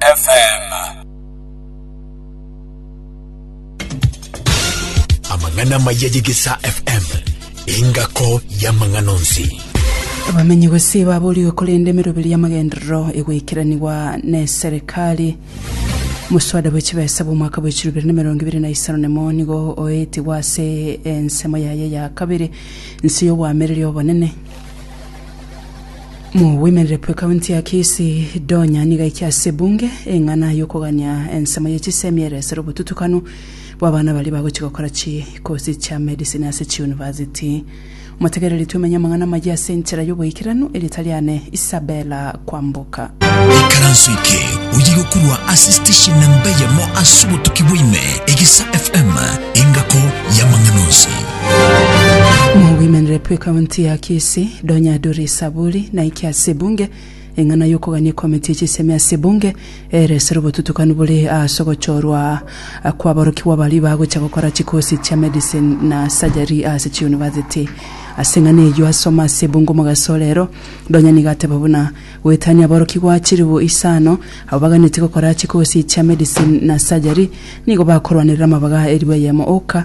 FM. Amang'ana amaya ye Gesa FM, engako y'amang'ana onsi. Abamenyi gose baborigwe korenda emeroberi y'amagenderero egoikeranigwa n'eserekari. Moswada bwe chibesa bw'omwaka bwa echiro ibere na emerongo ibere na isano nemo nigo oetigwe ase ensemo yaye ya kabere, Nse y'obwamereri obonene. Mobwemerere bw'Ekaunti ya Kisii, Donya nigo aikia ase ebunge eng'ana y'okogania ensemo ye chisemi eresere obotutukanu bw'abana baria bagochia gokora chikosi chia medicine ase chiunivasiti. Omotegereri twemenye amang'ana amayia ase enchera y'oboikeranu, erieta riane Isabella Kwamboka. Ikaranso eke oye gokorwa ase station namba eyemo ase obotuki bwaime, Egisa FM, engako y'amang'ana onsi. Mogoimanere pu ekaunti ya Kisii, Donya Duri Saburi naike ase ebunge, eng'ana y'okogania ekomiti ye chisemi ase ebunge ere esere obotutukanu bore ase ogochorwa kw'aborokigwa baria bagocha gokora chikosi chia medicine na surgery ase chiunivasiti. Ase eng'ana eyio asoma ase ebunge omogasorero, Donya nigo ateba buna, Goetania aborokigwa chilifu isano abo baganetie gokora chikosi chia medicine na surgery nigo bakorwanerera amabaga elifu eyemo oka,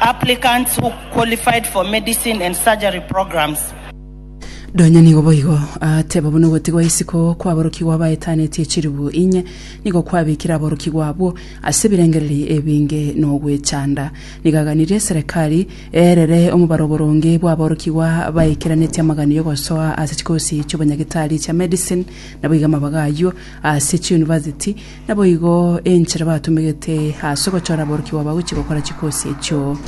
Applicants who qualified for medicine and surgery programs. Nonya nigo boigo ateba buna ogotigwa isiko kw'aborokigwa abaetanetie chilifu inye nigo kwabekire aborokigwa abwo ase ebirengereri ebinge na ogwechanda. Nigo aganirie eserekari eerere omobaro oboronge bw'aborokigwa baikeranetie amagani y'ogosoa ase chikosi chi'obonyagetari chia medicine naboigo amabaga ayio ase chiyunivasiti Naboigo enchera batumegete ase ogochora aborokigwa bagochia gokora chikosi echio.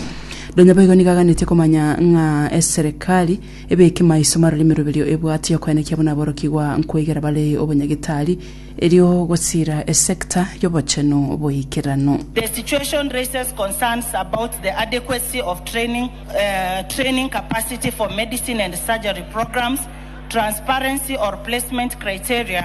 Nonya boigo nigo aganetie komanya ng'a eserekari ebeke maiso marore emeroberio ebwate yokoenekia buna aborokigwa nkoigera bare obonyagetari, erio gosira esekta y'obochenu boikeranu. The situation raises concerns about the adequacy of training, uh, training capacity for medicine and surgery programs, transparency or placement criteria,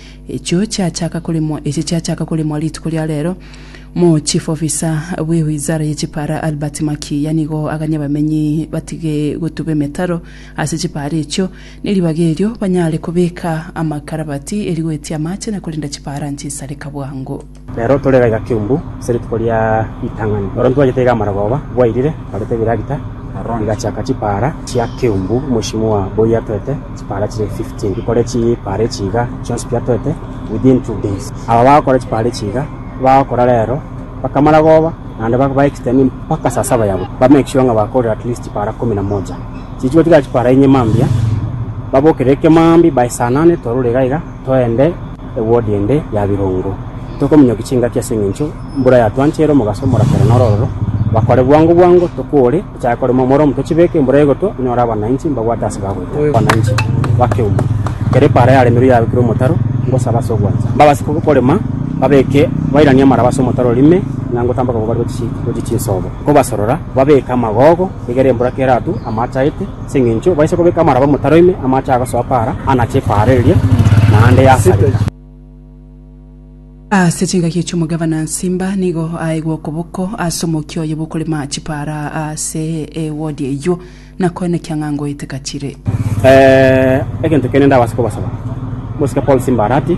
Echio chiachaka koremwa echi chiachaka koremwa rituko ria rero, mo chief officer bwe wizara ye chipara Albert Makiiya nigo aganye abamenyi batige gotuba emetaro ase chipara echio ne ribaga erio banyare kobeka amakarabati eri goetia amache na korenda chipara nchisareka bwango. Nero tore egaiga kiumbu ase rituko ria ritang'ani, baronto bachete iga amarogoba, bwairire, barete ebiragita, rigachaka chipaara chia kiumbu omochie mwa boyio atoete chipaara chire fifteen. Rikore chipaara echi iga chionsi biatoete within two days. Aba bagokora chipaara echi iga bagokora rero mpaka amarogoba, naende ba- ba extend mpaka saa saba ya botuko, ba make sure ng'a bakorire at least chipaara kumi na moja. Chichigotigara chipaara inye mambia, babokerere kemambia baesanane torure iga iga. Toende ewodi ende ya birongo, tokominyokia chingaki ase engencho mbura yatwanchire omogaso omorakera noro ororo. Bakore bwango bwango, tokoore, tochake korema omoromo, tochibeke embura egotwa, onyore abananchi mbabwate ase bagoita. Abananchi bakeuma, ekero epaara yaremirwe yabekirwe omotaro, ngosabe ase ogwancha, mbabase korema, babeke, bairanie amaraba ase omotaro ime, ng'a ngotamboka kobarwa gochia chinsobo. Nkobasorora, babeke amagogo. Egere embura kera atu amaache aete, ase engencho baise kobeka amaraba omotaro ime amaache agosoa paara anache epaara eria, naende yasareka. Ase chingaki echi omogavana Nsimba nigo aegwa okoboko ase omokia oye bw'okorema chipaara ase ewodi eyio, na koen ekiang'a ngoete gachire. Egento kende ndabase kobasaba, mosike Paul Simba Arati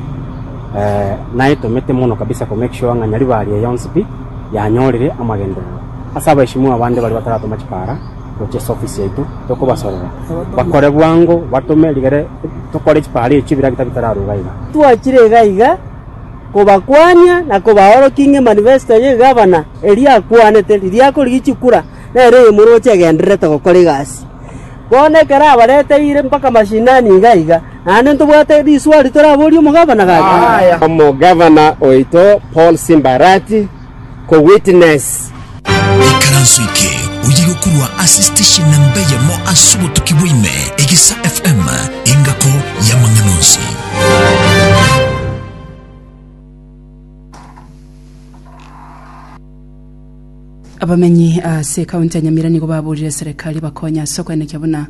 naetomete mono kabisa ko make sure ng'a Nyaribari eye yonsi pi yanyorire amagenderero. Ase abaishimwa abande baria bataratoma chipara gochia ase ofisi yaito, tokobasorora bakore bwango batome rigere tokore chipara echio bira gita bitararuga iga. Twachire iga iga kobakwania na kobaorokia ng'a emanifesto ye gavana eria akwanete, riria akorigia chikura, nere oyomoroche agendererete gokora egasi. Bono ekero abareteire mpaka mashinani iga iga, naende ntobwate riswali toraborie omogavana gake. Omogavana oito Paul Simbarati. ko witness. Ekaranso eke oyire okorwa ase station namba eyemo ase obotuki bwa ime, Egesa FM, engako y'amang'ana onsi. Abamenyi ase ekaunti ya Nyamira nigo baburire serekari ebakonye ase okoenekia buna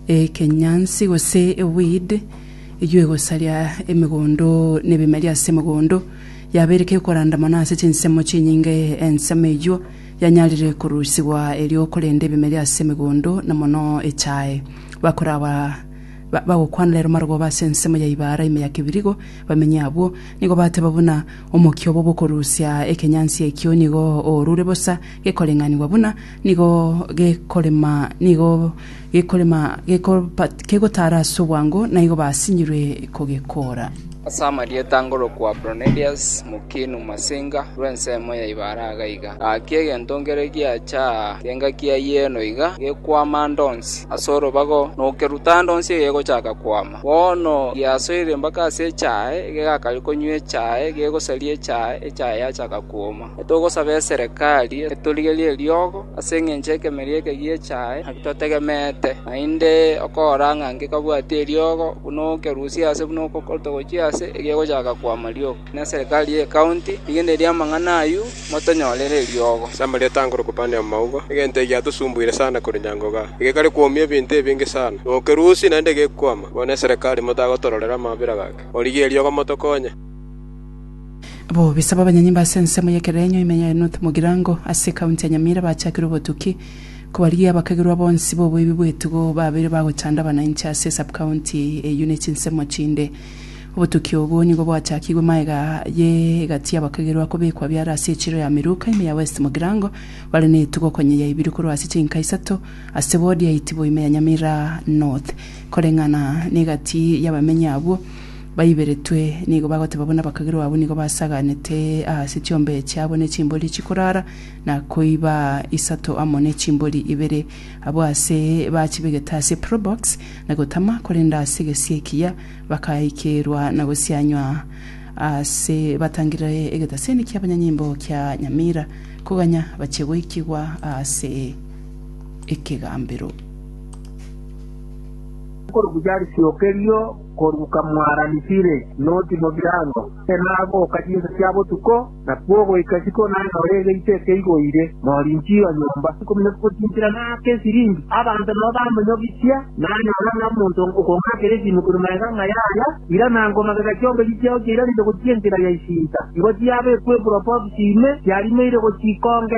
ekenyansi gose eweed eywo egosaria emegondo na ebimeri ase emegondo Yabeire kekoranda mono ase chinsemo chinyinge ensemo eyio yanyarire korusigwa erio korenda ebimeri ase emegondo na mono echae. Bakoraba bagokwana rero marogoba ase ensemo ya Ibaara ime ya Kibirigo, bamenyi abwo nigo bateba buna omokia obo bokorusia ekenyansi ekio nigo orure bosa gekoreng'anigwa buna Nigo gekorema, nigo gekorema, gekobat- kegotaara ase obwango, naigo basinyirwe kogekoora. Ase amarieta ngorokwa Bronelius, Mukinu, Masinga, rw'ensemo ya Ibare aga iga. Gaki egento nkere giacha aa, engaki ya yieno iga gekwama ande onsi ase orobago, nokeruta ande onsi egegochaka kwama. Bono giasoire mpaka ase echae, egegakaria konywa echae, gegosaria echae, echae yachaka kwoma. Togosaba eserekari etorigerie eriogo ase engencho ekemeria eke giechae naki totegemeete, naende okora ng'a ngekabwati eriogo buna okerusia ase buna okotogochia ase egegochaka kwama rioka. Inee serekari ye county rigendereria amang'ana ayio motonyorere eriogo? Samari etangore kobana amauga, egento eki giatosumbuire sana korwa nyango igaa, egekare kwomia ebinto ebinge sana, na okerusia naende gekwama. Bono eserekari motagotororera amabera gake, origie eriogo motokonye. Bobisa bw'abanyanyimba ase ensemo y'ekerenyo ime ya Enoth Mugirango ase ekaunti ya Nyamira bachakire obotuki kobarigia abakagirwa bonsi b'oboibi bw'etugo babeire bagochanda abanainche ase esabkaunti eyio ne chinsemo chinde. Obotuki obwo nigo bwachakigwe magega ye egati y'abakagirwa kobekwa biara ase echiro ya Miruka ime ya West Mugirango bare ne etugo konya yaibirwe korwa ase chinka isato ase ward ya Itibo ime ya Nyamira North koreng'ana ne egati y'abamenyi abwo. Baiberetwe nigo bagoteba buna abakagirwa abo nigo basaganete aase chiombe chiabo ne chimbori chikorara na koiba isato amo ne chimbori ibere. Abwo aase bachibegete ase probox na gotama, korende aase gesie ekiya bakaikerwa na gosianywa aase batangire egetaseni kia abanyanyimbo kia Nyamira koganya bachie goikigwa aase ekegambero. Korwa Bucharisi o kerio. Korwa kamwarani Sire noti mobirango, enagoka chinsa chia botuko, na kwogoika isiko nanyora egeito ekeigoire morinchi o nyomba. Nkomenya gotinchera naake esiringi, abanto nabo bamenyogichia, nanyora ng'a omonto okong'akera esimu korwa magega ng'a yaya ira, na nkomagega chiombechi chiao chiairanete gochia enkera ya isinta, igo chiabekwepura Opopsi ime, chiarimeire gochia ikonge.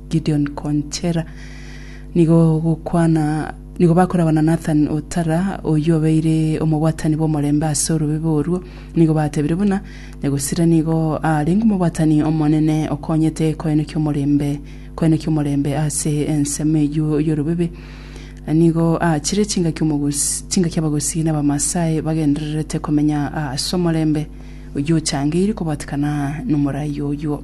Gideon Konchera nigo gokwana nigo bakoragwa na Nathan Otara oyio obeire omobwatani bw'omorembe ase orobebe orwo nigo batebire buna Nyagosira nigo arenge omobwatani omonene okonyete koenokia omorembe koenokia omorembe ase ensemo eyio y'orobebe nigo aachire chingaki omogosi chingaki abagosi na Abamaasai bagendererete komenya ase omorembe oyio ochangeiri kobwatikana nomorai oyio.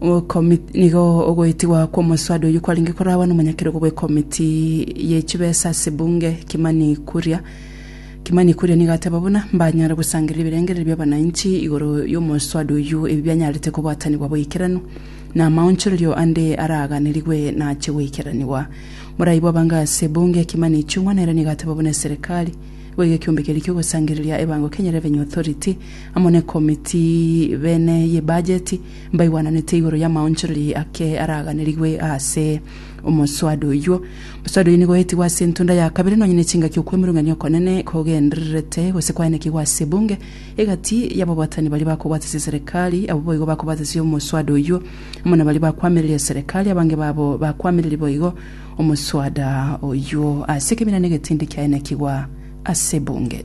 Okomiti nigo ogoetigwa kw'omoswada oyio kwarenge koragwa n'omonyakerogo bw'ekomiti ye chibesa ase bunge Kimani Kuria. Kimani Kuria nigo ateba buna mbanyare gosangereria ebirengererio bi'abananchi igoro y'omoswada oyio ebi bianyarete kobwatanigwa boikeranu na amaonchorerio ande araganerigwe nache goikeranigwa. Morai bw'abange ase bunge Kimani Ichung'wa nere nigo ateba buna eserekari nigo iga ekiombe keria ki'ogosangereria ebango Kenya Revenue Authority amo n'ekomiti bene y'ebajeti mbaigwananete igoro y'amaonchorerie ake araaganerigwe aase omoswada oyio. Omoswada oyio nigo oetigwe ase entunda ya kabere, nonye ne chingaki okwemurungania okonene kogendererete, gose kwaenekigwe ase ebunge, egati y'ababwatani baria bakobwatasia eserekari, abwo boigo bakobwatasia omoswada oyio, amo nabaria bakwamireria eserekari, abange babo bakwamireria boigo omoswada oyio ase ekeminana egetindi kiaenekigwa ase ebunge.